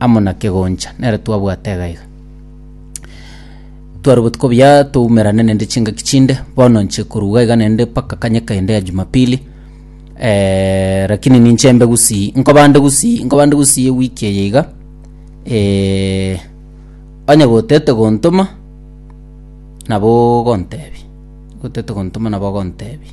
amo na kegoncha, nere twabwate iga iga. Twarwe botuko buya toumerane nende chingaki chinde, bono nche koruga iga nende mpaka kanyeka ende ya jumapili, rakini ninche mbe gusii nkobande gusii nkobande gusii ewiki eye iga, onye gotete gontoma, nabo ogontebia, gotete gontoma nabo ogontebia.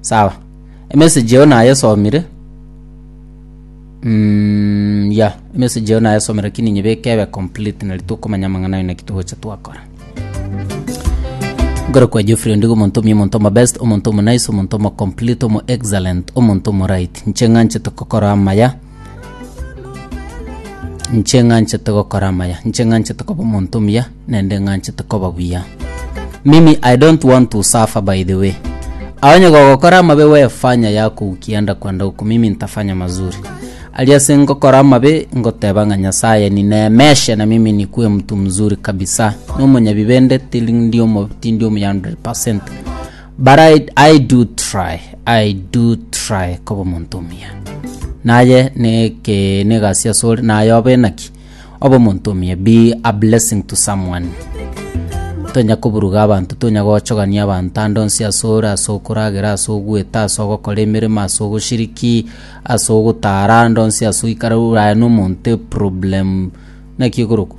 sawa emessage eo nayesomire mm, ya emessage eo nayesomire lakini nyebeke ebe complete nari tokomanya amang'ana ayo naki togocha twakora nkore kwa Geoffrey ondigo omonto omuya omonto omo best omonto omo nice omonto omo complete omo excellent omonto omo right nche ng'anchete kokora amaya Inche ng'anchete gokora amaya, inche ng'anchete koba omonto omuya, naende ng'anchete koba buya. Mimi I don't want to suffer by the way. Onye gogokora amabe we fanya yako ukienda kwenda huko mimi nitafanya mazuri. Ali ase ngokora amabe ngoteba ng'a Nyasaye nineemeshe na mimi nikuwe mtu mzuri kabisa. Nomonyabibe nde tiri ndi omo tindi omuya 100%. But I, I do try, I do try koba omonto omuya. Naye neke negasi asore naye obe naki obe omonto omuya be a blessing to someone. Tonya koburuga abanto tonya gochogania abanto ande onsi asore ase okoragera ase ogweta ase ogokora emeremo ase ogoshiriki ase ogotara ande onsi ase oikara ore aye na omonto problem naki ekorokwa